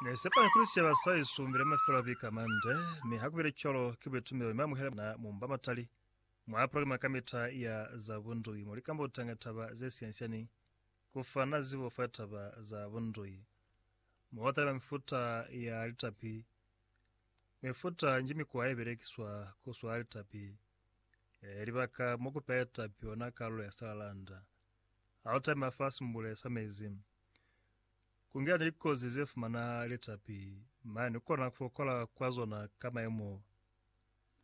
Ne sepa ni kuli sicaba sa isumbi le mafelo a bika mande, mi ha kubile cwalo, ki buitumelo mi amuhela na mumba matali mwa programa kamita ya za bundui mo likambotanga taba ze siani-siani, ku fana zibo fa taba za bundui, mo ba taliba mifuta ya litapi, mifuta nji mikwa ye belekiswa ku swala litapi, libaka mo ku peha litapi ona kalulo ya salalanda. Altaime afa simbule sa mezi. Kungela ni likozi ze fumana litapi, mane ni kona kufokola kwa zona ka maimo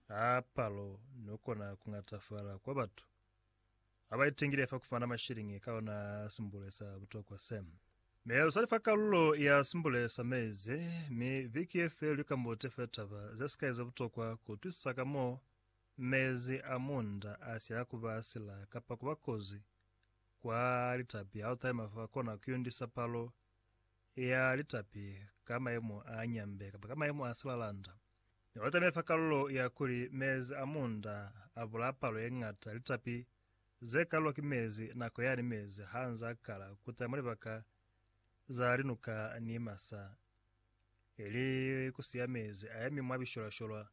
a palo ni kukona kungatafala kwa batu aba itengile fa kufumana mashilingi ka ona simbule sa butokwa se. Mi lusali fa kalulo ya simbule sa mezi, mi viki ye feli lukambute fe taba ze sikai ze butokwa kuutwisisa ka mo. Mezi a munda a sila ku ba sila kapa ku ba kozi kwa litapi ha lu taima fa kona ku yundisa palo ya litapi ka mayemo a nyambe kapa ka mayemo a silalanda. Ne lu taime fa kalulo ya kuli mezi a munda a bulaya palo ye ñata ya litapi ze kalulwa ki mezi nako yani mezi ha nz'a kala ku tala mwa libaka za linuka ni masa, ili ku siya mezi a yemi mwa bisholwasholwa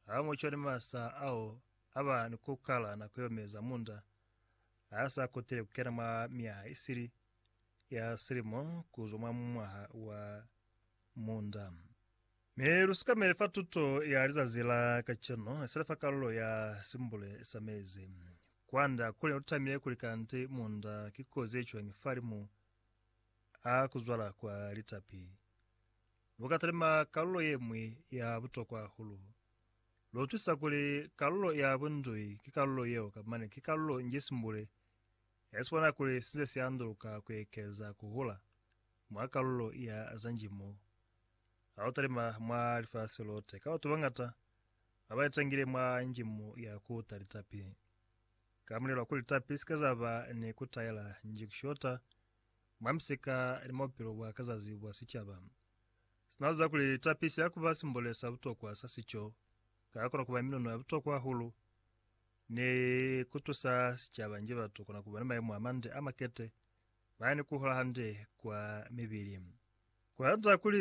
Ha mu cwani masa ao a ba ni ku kala na ku yomeza munda a sa kutile ku kena mwa myaha isili ya silimo ku zwa mwa mwaha wa munda. Mi lu sikamele fa tuto ya lizazi la kacenu, sina fa kalulo ya simbule sa mezi. Kwanda kuli ne lu tamile kuli kanti munda ki kozi ye cwañi fa limu a ku zwala kwa litapi. lu ka talima kalulo ye ñwi ya butokwa hahulu. Lu utwisa kuli kalulo ya bundui ki kalulo yeo ka mane ki kalulo nji simbule ya sibona kuli si nze si anduluka ku ekeza ku hula mwa kalulo ya za njimo. Ha lu talima mwa lifasi lote, ka batu bañata ba ba itangile mwa njimo ya ku uta litapi. Ka mulelo wa kuli litapi si ke za ba ni ku taela nji ku shota, mwa misika ni mwa bupilo bwa ka zazi bwa sicaba. Sina kuziba kuli tapi siya kuba simbole sa butokwa sa sico, ka kona kuba minono ya butokwa hahulu ni kutusa sicaba nji batu kona kuba ni mayemo amande amakete, bani kuhola hande kwa mibili. Kuhata kuli